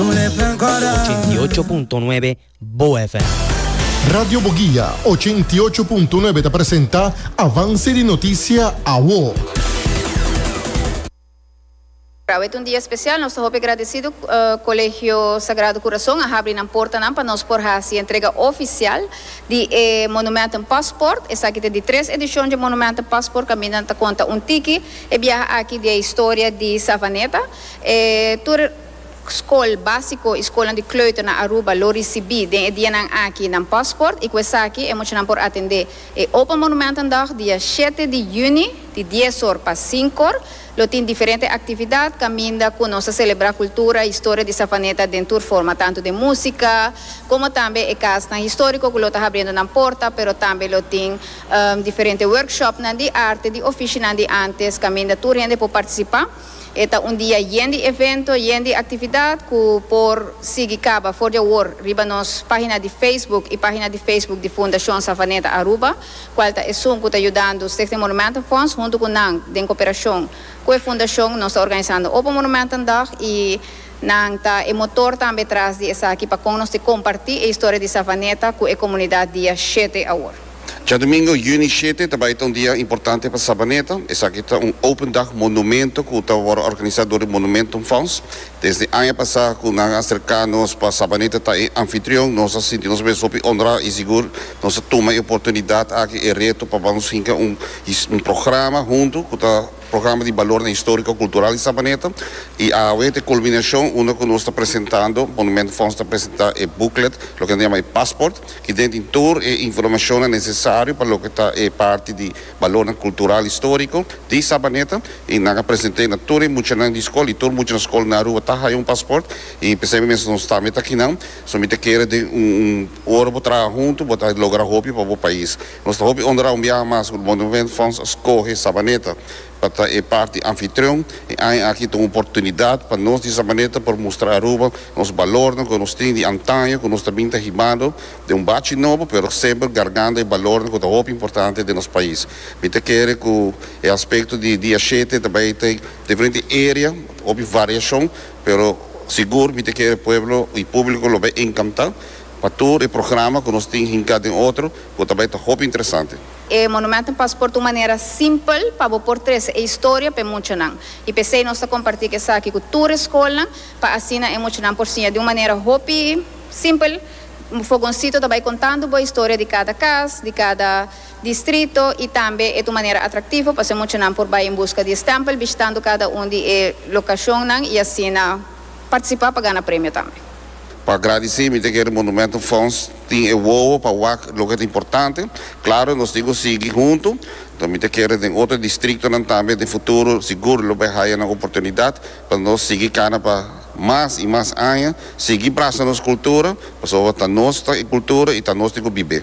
Ochenta i ocho punto nuebe Bo FM. Radio Boguia ochenta i ocho punto nuebe ta presenta Avance di Noticia Awo. Awe ta un dia special, nos ta hopi agradecido Colegio Sagrado Corazon a habri nan portanan pa nos por haci entrega oficial di e Monumentum Passport. Esaki ta di tres edicion dje Monumentum Passport caminda nan ta conta un tiki e biaha aki di e historia di Savaneta. E tur. Skol básiko i skolnan di kleuter na Aruba lo risibí den e dianan aki nan pòstkort i ku esaki e muchanan por atendé e Open Monumentendag dia shete di yüni di dies or pa sinku or. Lo tin diferente aktividat kaminda ku nos ta selebrá kultura i historia di Savaneta den tur forma tantu den músika komo tambe e kasnan históriko ku lo ta habriendo nan porta pero tambe lo tin diferente workshopnan di arte di ofishinan di ántes kaminda tur hende por partisipá. E ta un dia yen di evento, yen di actividad cu por sigui caba for di awor riba nos pagina di Facebook y pagina di Facebook di Fundacion Savaneta Aruba, cual ta esun cu ta yudando Stichting Monumentenfonds. Hunto cu nan, den cooperacion cu e fundacion, nos ta organisando Open Monumentendag y nan ta e motor tambe tras di esaki pa con nos te comparti e historia di Savaneta cu e comunidad dia shete awor. Djadomingo, Juni shete, ta bai ta un dia importante pa Sabaneta. Esaki ta un Open Dag Monumento ku ta wòrdu organisá dor di Monumentum Fonds. Desde aña pasá ku nan a serká nos pa Sabaneta ta e anfitrion, nos a sinti nos mes hopi onrá i sigur nos a tuma e oportunidat aki, e reto pa ban nos hinka un un programa huntu ku ta. Programa di Balornan Historico Cultural di Sabaneta y awe ta e culminacion unda cu nos ta presentando, Monument Fonds ta presenta e booklet loke nan yama e Passport y den tin tur e informacionnan necesario pa loke ta e parti di Balornan Cultural Historico di Sabaneta y nan a present'e na tur e muchanan di scol y tur muchanan scol na Aruba ta haya un Passport y p'esei mes nos tambe ta akinan so mi ta kere den un ora bo traha hunto bo ta logra hopi pa bo pais. Nos ta hopi onrá un biaha mas ku Monument Fonds a skohe Sabaneta pa ta e parti anfitrion. E aña aki ta un oportunidat pa nos di Sabaneta por mustra Aruba nos balornan ku nos tin di antaño ku nos ta bin ta hibado den un bachi nobo pero semper gargando e balornan ku ta hopi importante den nos pais. Mi ta kere ku e aspekto di dia shete ta bai ta diferente area hopi variashon pero sigur mi ta kere pueblo i públiko lo bai enkantá. Pa tur e programa ku nos tin hinká den otro ku ta bai ta hopi interesante. E Monumentum Paspoort un manera simpel pa bo por trese e historia p'e muchanan. I p'esei nos ta kompartí esaki ku tur e skolnan pa asina e muchanan por siña di un manera hopi simpel. Fogonsito ta bai kontando bo historia di kada kas, di kada distrito i tambe e ta un manera atraktivo pasobra e muchanan por bai en buska di e stèmpel bishitando kada un di e lokashonnan i asina partisipá pa gana premio tambe. Pa gradici mi ta kere Monumentum Fonds tin e wowo pa wak loke ta importante. Claro nos tin cu sigui hunto, enton mi ta kere den otro districtonan tambe den futuro sigur lo bay haya nan oportunidad pa nos sigui cana pa mas y mas aña, sigui brasa nos cultura, pasobra ta nos ta e cultura y ta nos tin cu bibe.